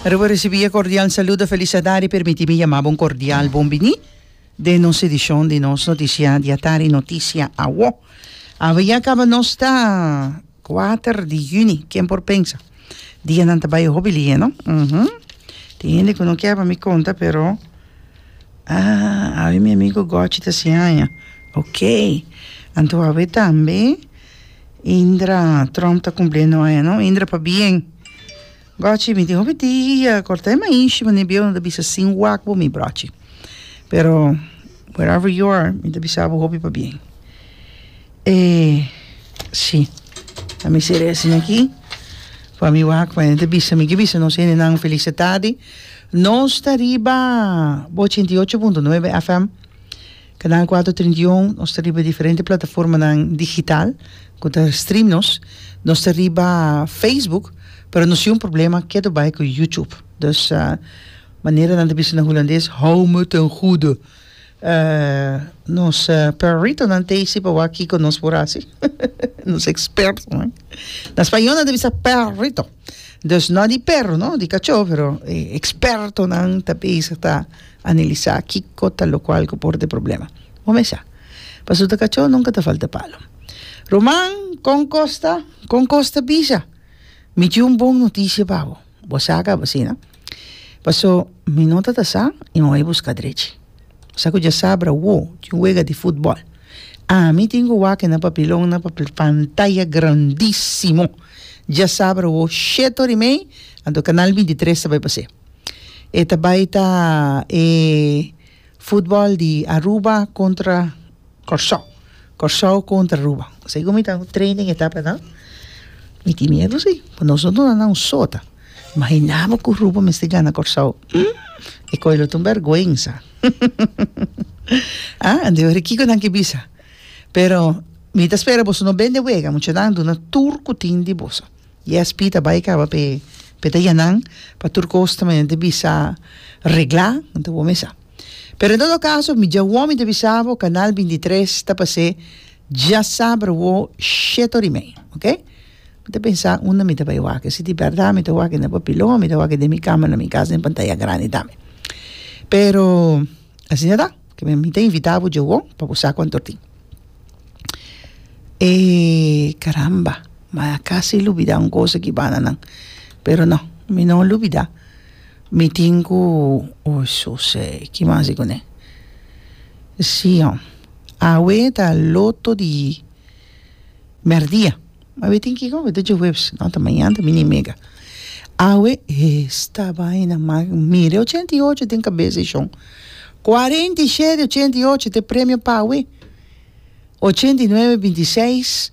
Riba ricibi e cordial saludo e felicidad e permiti mi yama bo un cordial bon bini den nos edicion di nos noticia di atari noticia awo. Awe ya caba nos ta cuater di juni ken por pensa dianan ta bay hopi lie no uhmm tin hende cu no kier pa mi conta pero ah awe mi amigo Gochi ta siaña ok anto awe tambe Indra, Trump ta cumpli e noa ya no, Indra pa bien. Gochi, mi tin hopi dia corta e mainshi manera bieu no ta bisa sin wak bo mi brochi. Pero wherever you are mi ta bisa bo hopi pa bien. E si, a mi ser ese aki pa mi wak pa hende bisa mi, ke bisa nos hendenan felicitadi. Nos ta riba ochenta y ocho punto nuebe FM. Canal Cuatro Trinta y Un, nos ta riba diferente plataformanan digital cu ta stream nos, nos ta riba Facebook, pero nos tin un problema kiet do bay cu YouTube, dus manera nan ta bisa na hulandes hou me ten goede, nos perritonan ta isi pa wak kico nos por hasi, nos expertonan, na spañol nan ta bisa perrito. Dus no di perro no di cachó pero e expertonan ta bezig ta analisá kiko ta locual cu por de problema bo mesa pasobra ta cachó nunca ta falta palo Roman con cos ta con cos ta bisa mi tin un bon noticia pa bo bo sa caba asina paso mi no ta ta sa y mi a bai busca drechi. sa ku dje sabra wo tin un wega di futbòl ami tin ku wak na papilon na pa pantaya grandísimo dje sabra wo shét ori mei anto kanal binti tres ta bai pa se e ta bai ta e futbòl di Aruba kontra Kòrsou. Kòrsou kontra Aruba. Segun mi ta training e ta pa nan, mi tin miedu si. Ku nos lo duna nan un sota. Imaginá bo ku Aruba mester gana Kòrsou. Hum! E kò'i lo ta un bèrgwensa. A, anto ora kiko nan ke bisa? Pero mi ta spera boso no bende wega. Muchanan duna tur ku tin di boso. I esp ta bai kaba p'e, p'e ta yanan pa tur kos ta manera di bisa reglá. Anto bo mesa. Pero en todo caso mi dja wou mi ta bisa bo canal binti tres ta pa se dja saber wou sheto ri mei ok mi ta pensa unda mi ta bay wak si di berdad mi ta wak na papilon o mi ta wak den mi cama na mi casa den pantaya grandi tambe pero asina ta kibe mi ta invita bo dja wou pa bo sa cuanto tin e caramba maya casi lubida un cosa aki bananan pero no mi no lubida. Mi tin ku José. Ki mas i kuné? Sí ho. Awe ta loto di mèrdia. Awe tin kiko? Awe ta djohuebs. No, ta mañan, ta mini mega. Awe esta baina man mire. Ochenta i ocho den kabes e shon. Kuarenta i shete ochenta i ocho ta e premio pa awe. Ochenta i nuebe binti seis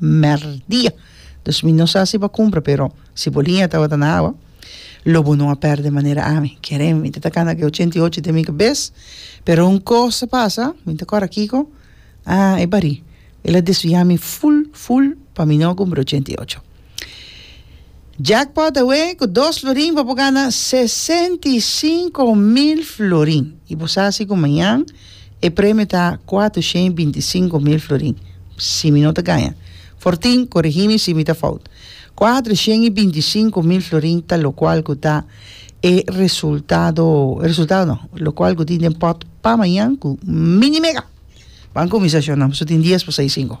merdia dus mi no sa si bo a cumpra pero si bo liña tabata na awa lo bo no a perde manera ami kere mi ta tacana cu e ochenta y ocho ta e mi cabes pero un cos a pasa mi ta cora kico ah e barí el a desvia mi ful ful pa mi no a cumpra e ochenta y ocho. Jackpot awe ku dos florin bo por gana sesenta i sinku mil florin i bo sa si ku mañan e premio ta kuatrushen binti i sinku mil florin si mi no ta gaña for tin korigi mi si mi ta fout kuatrushen i binti i sinku mil florin ta lokual ku ta e resultado e resultado no lokual ku tin den pot pa mañan ku mini mega ban kuminsa shon nan pasobra tin dies pa sa i sinku.